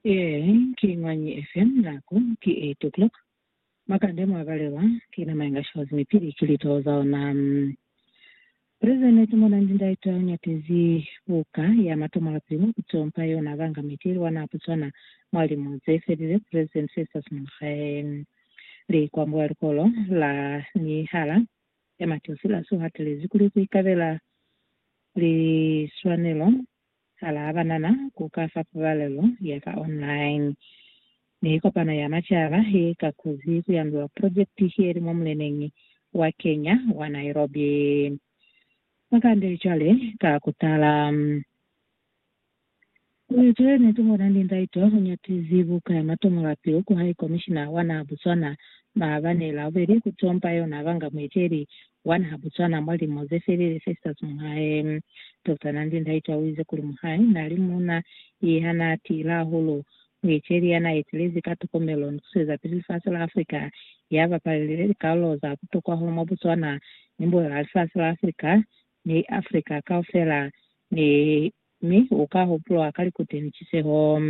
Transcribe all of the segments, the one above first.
Ee, ki mwañi FM nako ki 8 o'clock. Makande mwa balelwa ki nama inga shows mi pili ki litoho za ona. Prison ne tu mona ndi ndaitwa u nyatezi buka ya matomo la pili mwa ku tompa yona banga miti lwa na Botswana mwa limu ze felile President Festus Mogae li kwa mbo ya likolo la mihala ya Mateo Silaso hatelezi kuli ku ikabela liswanelo Sala a banana ku ka fa pabalelo ya ka online ni kopano ya macaba ye ka kuzi ku yandula projekiti ye li mwa muleneñi wa Kenya wa Nairobi. Ba kande cwale ka ku tala kuli tuli ni tungona ni ndaito u nyatizi buka ya matomola pilu ku High Commissioner wa naha Botswana maabani Laubeli ku tompa yona banga mueteli Wani ha bucwana mwa lilimo ze felile, Festus muhae Doctor Nandi Ndaitwa uize kuli muhae nali muuna ye hana tiila hahulu, mueceli yana etelezi ka tokomelo ni kusuezapili lifasi la Afrika, ya bapalile likalolo za butokwa hahulu mwa Botswana ni mbulela ya lifasi la Afrika ni Afrika kaufela, ni Mi u ka hupulwa ka likuti ni ciseho.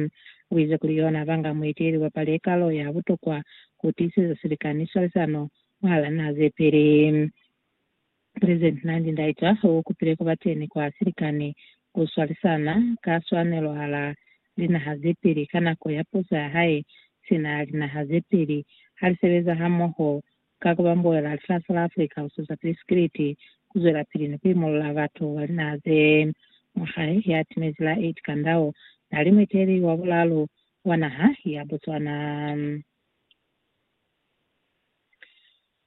U ize kuli yona banga mueteleli wa pale kalo ya butokwa ku tiiseza silika ni swalisano mwahala naha ze peli. President Nandi Ndaitwa u kupile ku ba teni kwa silika ni ku swalisana ka swanelo hala linaha ze peli ka nako ya puso ya hae sina linaha ze peli ha li sebeza hamoho ka ku ba mbuela lifasi la Africa ku siza pili sikiliti, ku zwelapili ni ku imolola batu ba linaha ze mwa hae ya timezi la Ed Kandau na li mueteli wa bulalu wa naha ya Botswana.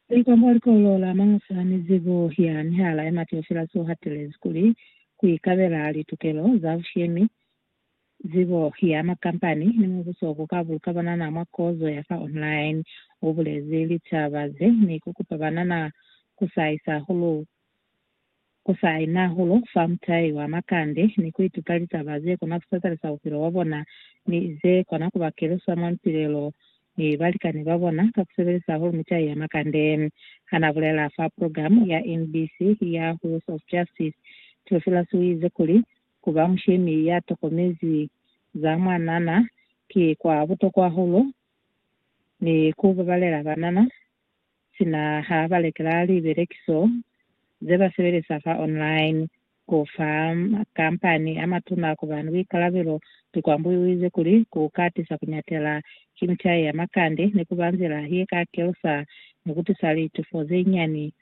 Likwambo likolo la Mangwesa la Mizibo ya Mihala ya Matiofi la si hatelezi kuli ku ikabela litukelo za bushemi Zibo ya makampani ni mubuso ku ka buluka banana mwa kozo ya fa online. U bulezi litaba ze ni ku kupa banana ku saisa hulu ku saina hulu fa mutai wa makande ni ku ituta litaba ze kona ku satalisa bupilo bwa bona ni ze kona ku ba kelusa mwa mipilelo ni balikani ba bona ka ku sebelisa hulu mitai ya makande. Ha na bulela fa program ya NBC ya Wheels of Justice, Theophilus u ize kuli, Ku ba mushemi ya tokomezi za mwanana ki kwa butokwa hahulu, ni ku babalela banana sina ha ba lekela libelekiso ze ba sebelisa fa online ku fa makampani a matuna kuba ni buikalabelo. Likwambu i uize kuli, Ku katisa ku nyatela ki mitai ya makande ni ku ba nzila ye ka kelusa ni ku tisa litufo ze nyani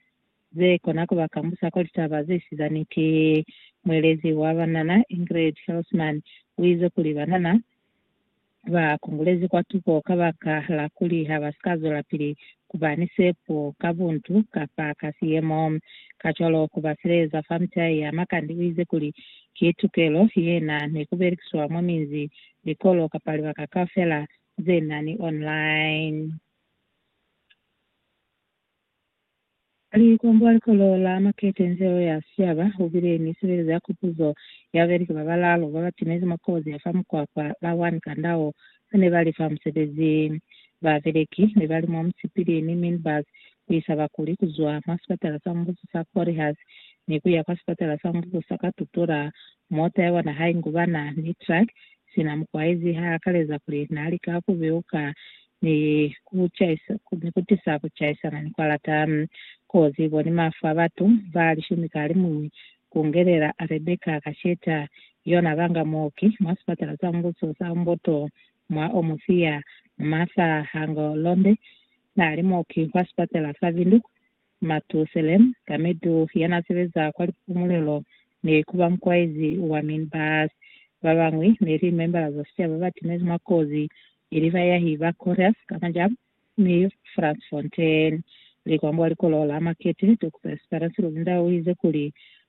ze kona ku ba kambusa kwa litaba ze si za niti. Muelezi wa banana Ingrid Hillsman u ize kuli banana ba kungulezi kwa tuko kabaka la kuli ha ba si ka zwelapili ku ba ni sepo ka buntu kapa ka siyemo, kacwalo ku ba sileleza fa mitai ya makandi. U ize kuli, Ki tukelo ye na ni ku belekiswa mwa minzi, likolo, kapa libaka kaufela ze na ni online. Mali kombola likolo la makete nze o ya siaba u bile ni sebelezo ya kupuzo ya beleki ba balaalu ba ba timezi mwa kozi ya fa mukwakwa la One Kandao ba ne ba li fa musebezi. Ba beleki ne ba li mwa musipili ni minibus ku isa bakuli ku zwa mwa sipatala sa mubuso sa Corihas ni ku ya kwa sipatala sa mubuso sa Katutura. Mota ya bona ha i ngubana ni truck sina mukwaezi ha akaleza kuli na lika ku beuka ni ku caisa, ku, ni ku tisa ku caisana ni kwalata. Kozi bo ni mafu a batu ba lishumi ka limuñwi, ku ngelela Rebecca ka ceta, yona banga muoki mwa sipatala sa mbuso sa Umboto mwa Omusia, Martha Hanglonde, na li muoki kwa sipatala sa Windhoek, Matusalem, ka medu ya n'a sebeza kwa lipumulelo, ne ku ba mukwaezi wa Minbaas. Ba bañwi ne li membala za sicaba ba timezi mwa kozi, ili bayahi ba Correas ka Majam ni Frantz Fontaine. Likwambo likolo la Marquette, Doctor Esperance Luzinda o ize kuli,